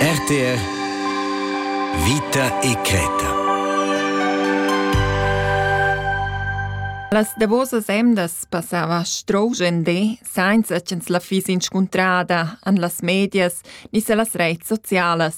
RTR Vita e Creta Las davosas emdas passava strogen de, sainza ch'ins la fiss inscuntrada an las medias ni se las reits socialas.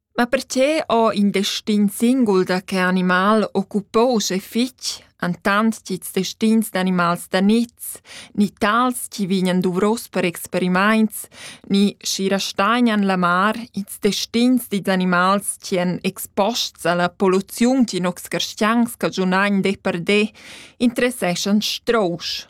Ma perche ho in destin singul da che animal occupouse fich entant ch'ils destins d'animals da niz, ni tals chi vegnan duvros per experimaints, ni schi rastagnan la mar ils destins dils animals chi èn exposts alla polluziun ch'in nocs carstians cagiunagn de per de, interesseschan strousch.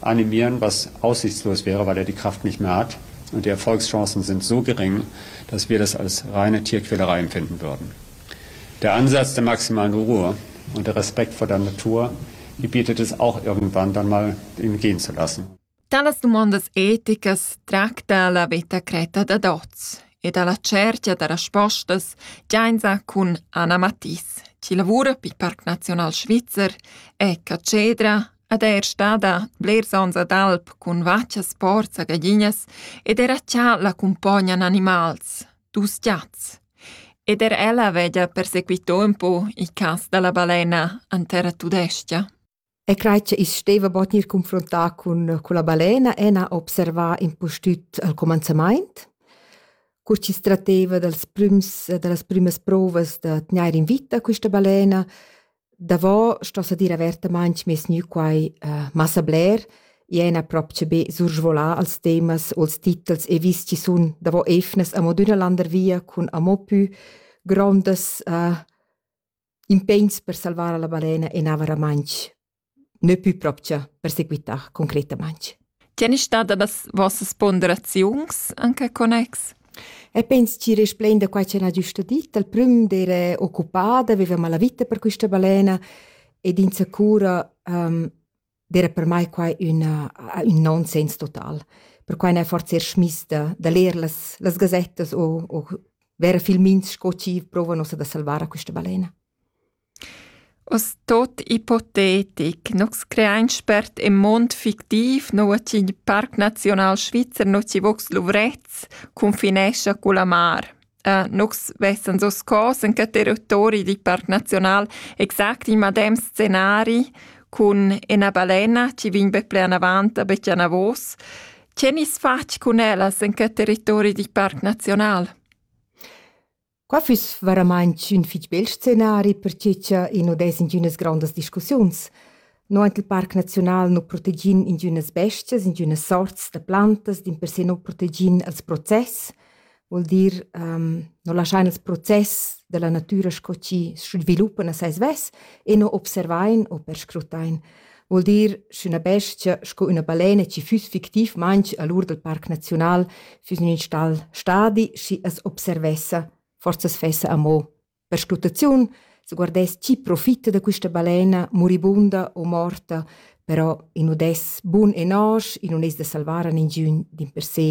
Animieren, was aussichtslos wäre, weil er die Kraft nicht mehr hat, und die Erfolgschancen sind so gering, dass wir das als reine Tierquälereien finden würden. Der Ansatz der maximalen Ruhe und der Respekt vor der Natur, die bietet es auch irgendwann dann mal gehen zu lassen. Talas domandas eticas tracta la vita creta da Doz e dalla cerchia da raspostas giainza cun Anna Mattis, chi lavura per Parc Nazional Svizzer e Cacedra Ed eir stada blers ons ad alp cun vachas porza gaglinas ed era cha la cumpognan animals, dus giats. Ed er ella veglia persequitò ün po il cas da la balena an terra tudescha. E crai che i's steva bod gnir confrontà cun culla balena e n'ha observà impustüt al comanzamaint, cur chi s tratteva dals prüms da las prümas prouvas da tgnair in vita quista balena Davo sto sa dir avertamaing meis gnü quai massa bler. I ena propcha be sursvolà als temas o als titels e vis chi sun davo eivnas amo d'üna landervia cun amo pü grondas impegns per salvar la balena e na varamaing, nö pü propcha per seguità concretamaing. Tg'en è stada las vossas ponderaziuns en quel connex? E pens tgi resplain da quai ch'el ha giusto dit. Al prüm d'era occupada, veveva la vita per quista balena ed insacura um, d'era per mai quai una, un nonsens total. Perquai n'è forse er schmista da leer las, las gazettas o, o vera filmins sco chi provano da salvare questa balena. Oz tuot ipotetic, nus creain spert ün muond fictiv, nouva chi il Parc Naziunal Svizzer no chi vogs luvrets cunfinescha culla mar. nus vessans hoz cos in que territori dil Parc Naziunal exact il madem scenari cun üna balena chi vegn be plü anavant a be chi anavos. Che nis fatg cun ellas in que territori dil Parc Naziunal? Qua füss varamaing ün fich bel scenari per che cha i nu dess ingünas grondas discussiuns. No aint il Parc Naziunal nu protegin ingünas bestias, ingünas sorts da plantas, dimpersè nu protegin els process, voul dir nu laschain ils process da la natüra sco chi sviluppan a sai svess e nu observain u perscrutain. Vuol dir, sch'üna bestia sco üna balena chi füss fictivmaing a l'ur dal Parc Naziunal füss in ün stal stadi, schi as observessa, forsa as fessa amo. Per sclutaziun se guardess chi profitta da quista balena, muribunda o morta, però in udess bun e nosch, i nun es da salvar a ningiün dimpersè.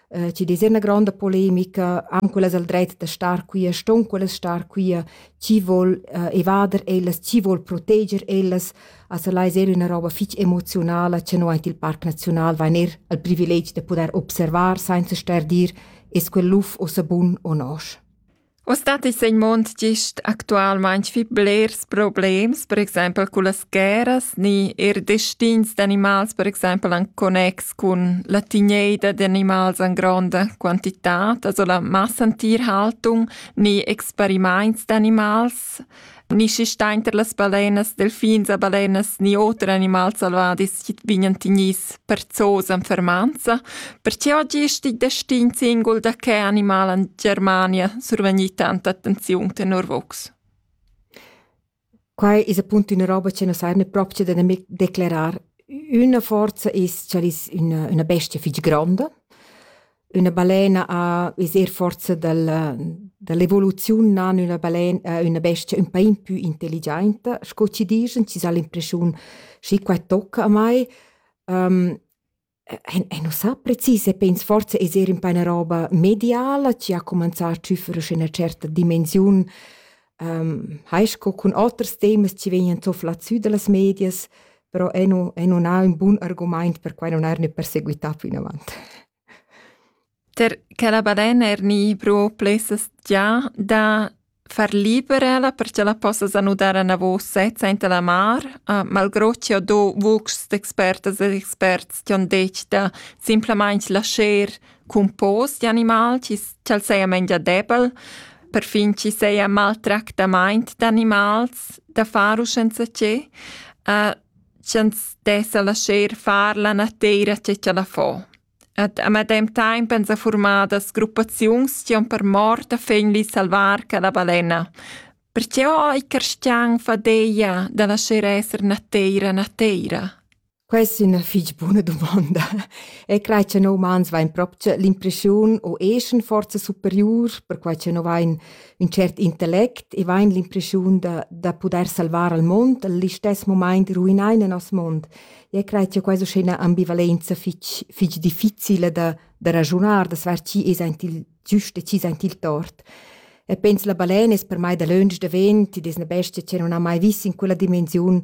eh, ci des una gronda polemica am quellas al dret da star qui ston quellas star qui chi vol eh, evader ellas chi vol proteger ellas also lai ser una roba fich emotionala che no ait il parc national vain er al privileg de poder observar senza ster dir es quel luf o sabun o nosch Uss dat ins in mund gist actualmain fich blers problems, per exaimpel cullas guerras, ni eir destins d'animals, per exaimpel en connex cun la tigneida d'animals en gronda quantità, also la massentierhaltung ni experimaints d'animals. Ni schi stainter las balenas, delfins e balenas, ni oter animals selvadis chi vignan tignis per zoos en fermanza, perche oggi est il destin singul da che animal en Germania survegni tanta attenziun tenor vos? Quai es appunto üna roba che nos eirne propcha da nemic declerar. Üna forza es ch'el es üna, üna bestia fich gronda, üna balena ha es eir forsa dal da l'evoluziun nan üna balen äh, üna bestia ün pa in pü intelligiainta, sco chi dischan, chi s'ha l'impreschiun schi qua tocca a mai. Ehm, e e nu sa precis e pens forsa es eir ün pa üna roba mediala chi ha comanzà a tschüffere sün üna certa dimensiun. Ehm, hai sco cun oters temas chi vegnan zufflà sü da las medias, però ei nu, ei nun ha ün bun argumaint per quai non er ne perseguità plinavant. Per che la badena er ni pro plessas già da far liberela perché la possas anudar a navò sezza enta la mar, uh, malgrò che ho do vucs d'expertas e experts che han detg da simplamain lascher cun pos di animal chi ch'al seia mengia debel, perfin chi seia maltractamaint d'animals da far u senza che, uh, ch'ans dessa lascher far la nateira che ch'ella fo. Ed a medem taimp ans ha formadas gruppaziuns chi han per mort a fegli salvar quella balena. Perché ho i carstian fadeia da lascher esser nateira nateira? Quest è ina fitg buna dumonda. E crai che noi umans vain proprio l'impression o eschan forza superiur, perquai che noi vain ün tschert intellect e vain l'impression da, da pudair salvar al mond, al istess momaint ruinar il nos mond. E crai che questa è una ambivalenza fitg, fitg difficile da, da ragiunar, da sver chi es aint il, Giust decis aint il tort. E pens la balen es per mai dalöntsch davent, id es na bestia che non ha mai vis in quella dimensiun,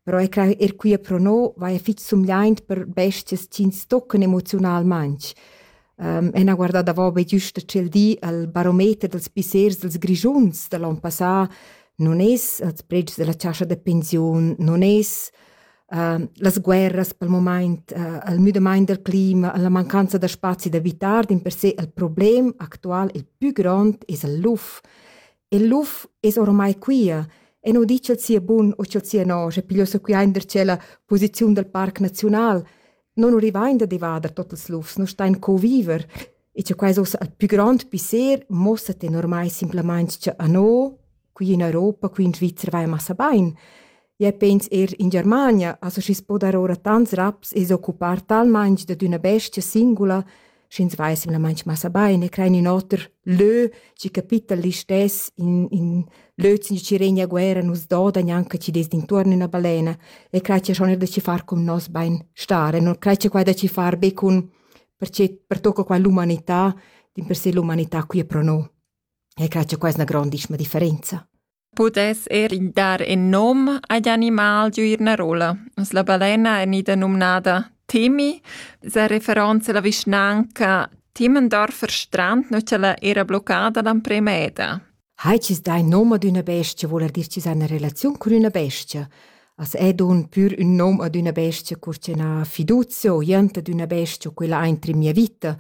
però er, er quia pro no vaja fich sumgliaint per bestias chi'ns toccan emoziunalmaing. Um, e n'ha guardà davo be güsta tschel di al barometer dals pissers dels Grischuns da l'on passà, non es als predschs da la chascha da pensiun, non es Ehm, las guerras pel mumaint, ehm, il müdamaint del clima, la mancanza da spazi da vitar din per se il problem actual il pü grond es il luf. Il luf es oramai quia e nu di ch'el sia bun u ch'el sia no, sche pigliossa quia in der tschella posiziun dal parc naziunal. non urivain da devader tot ils lufs, non stain co viver. E che quais ussa ün pü grand pisser mossa te normai simplamaing cha a no, qui in Europa, qui in Svizra vai massa bain. Ja pens er in Germania, also schi's po dar ora tants raps e s'occupar talmaing dad üna bestia singula, sch'ins veissem la manch massa bain e crein ün oter lö, chi capitta l'istess, in, in lö chi regna a guerra nus doda gnanca chi dess d'intuorn üna balena e creia schon er da ci far con nos bain star e non creia quai da ci far be con perché pertocca qua l'umanità, dimpersè l'umanità qui è pro no. E creia quai es 'na grandissima differenza. pudess er dar in nom agl animal giu ina rolla. La balena è ida numnada Temi, sa referenza alla vischnanca Timmendorfer Strand, nu ch'ella era bloccada l'emprema eda. Hai cis dai nom ad üna bestia, voul er dir cis ha una relaziun cun üna bestia. As è dun pür ün nom ad üna bestia cur ch'eu n'ha fiduzia o jent ad üna bestia, quella aint in mia vita.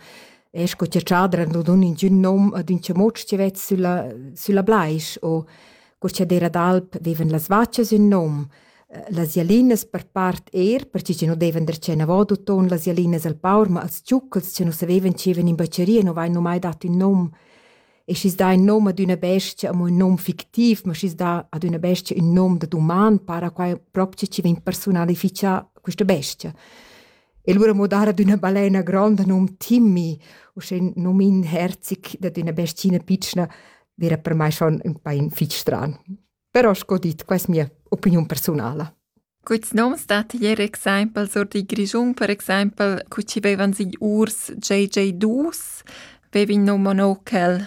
E sco cha tschadra nu dun ingün nom ad ün chamuotsch chi vet sülla, sülla blais o cur cha d'eira d'alp veivan las vachas ün nom. Las jalinas per part eir, perche chi nu devan der tschenavot uton las jalinas al paur, ma als giucchels chi nu savevan chi evan in bacheria nu vain nu mai dat ün nom. e schi's dà ün nom ad üna bestia, amo ün nom fictiv, ma schi's dà ad üna bestia ün nom da duman, para quai propcha chi vegn persunalifichà quista bestia. E lura mo dar ad üna balena gronda nom Timmy, uschè ün nom inherzic dad üna bestiina pitschna, vera per mai schon ün pain fich stran. Però sco dit, quai es mia opiniun persunala. Quits noms dat ier exempel sur di Grischun, per exempel, cu ci bevan sig urs JJ Dus, bevin no monokel